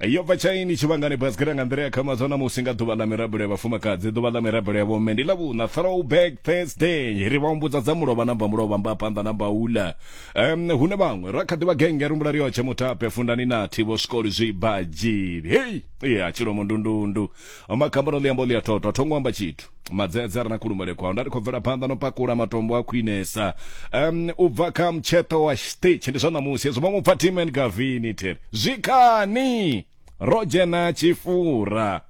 yo bva tshaini tshivhangani basiketa nga nḓila ya kha mazwana musi nga ḓuvha ḽa mirabelo ya vhafumakadzi ḓuvha ḽa mirabelo ya vhomme ndi ḽa vhuṋa throwback thursday ri vha humbudza dza mulovha na mbamulovha mba phanḓa na mbaula um hune vhaṅwe ra kha ḓivha genge rumbula riotshe mutape fundani nathi vho swikoli zwibadzhili hei ya tshilomo ndundundu makhambani ḽi amba ḽi a thotho a thongo amba tshithu madzedze a re na khulumele kwao nda ri khou bvela phanḓa no pakula matombo a khwinesa um u bva kha mutsheṱo wa stage ndi zwa ṋamusi hezwo vhaṅwe upfa team and gavini theri zwikhani ro dzhena tshifura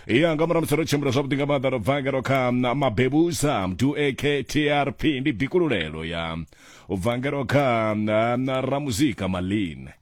ya nga murahu musi ro tshimbila zwavhuḓi nga maanḓa ro bva ngero kha mabebusa mdu aktrp ndi bikululelo ya u bva ngero kha ramuzika maline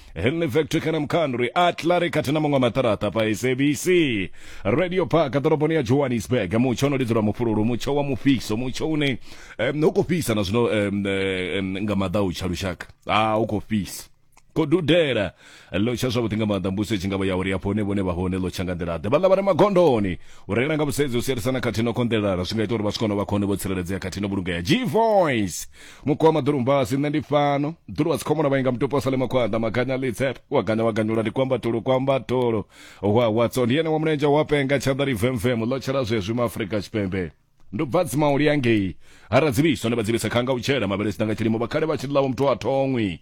Henley Factory kana Mkhandri Atlari khathihi na maṅwe maṱaraṱa pa SABC Radio Park ḓoroboni ya Johannesburg mutsho ono lidzwa mufhululu mutsho wa mufhiso mutsho une um, u khou fhisa na zwino um, um, nga maḓa u tsha lushaka a u khou fhisa khou dudela ḽo tsha zwavhuḓi nga maanḓa mbuso i tshi nga vha ya uri hafho hune vhone vha hone ḽo tsha nga nḓila ḓe vhaḽa vha re magondoni u reila nga vhusedzi u sielisana khathihi no konḓelelana zwi nga ita uri vha swika no vha khone vho tsireledzea khathihi no vhulungea g voice mukoma ḓulumbasi nṋe ndi fano ḓulu wa dzikhomona vhainga mutupo wa salema khwaḓa maganya litse wa ganya wa ganyula ndi kwamba tulu kwamba tulu wa watso ndi ene wa mulenzhe wa penga tshanḓa livemvemu ḽo tshela zwezwi ma afrika tshipembe ndo bva dzimauli yangei ha radzivhiswa ndi vhadzivhisa khanga u tshela mavhele sina nga tshilimo vhakhale vha tshi ḽawo muthu a thongwi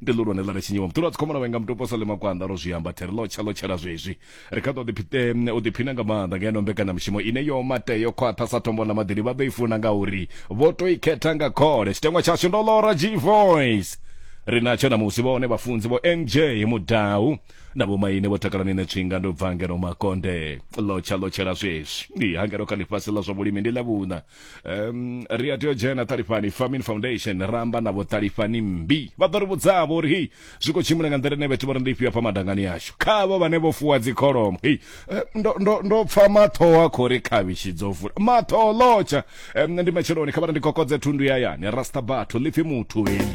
ndi ḽihulwane ḽa re tshinyiwa muṱulo wa dzikhomana wenga mutupo sa ḽima kwanḓa ro zwi amba theri ḽo tsha ḽo tshela zwezwi ri kha ḓo u ḓiphina nga maanḓa ngeno mbekanyamushumo ine yo mate yo khwaṱha sa tombo ḽa maḓini vha ḓo i funa ngauri vho to i khetha nga khole tshiteṅwa tshashu ndo ḽora g voice ri natsho namusi vhone vhafunzi vho nj mudau na vhomaine vho takala nine tswinga ndo bva ngeno makonde ḽo tsha ḽo tshela zwezwi ndi hangeno kha ḽifhasi ḽa zwa vhulimi ndi ḽa vhuṋa um, ri a tea u dzhena ṱalifhani farming foundation ra amba navho ṱalifhani mmbi vha ḓo ri vhudzavho uri hei zwi khou tshimbila nga nḓila ine vhathu vha ri ndi ifhio hafha madangani yashu khavho vhane vho fuwa dzikholomo hei eh, ndo- ndo- ndo pfa mathoho a khou ri khavhishi dzo vula mathoho lotsha Em, ndi matsheloni kha vha ri ndi kokodze thundu ya yani rasta batho lipfi muthu heli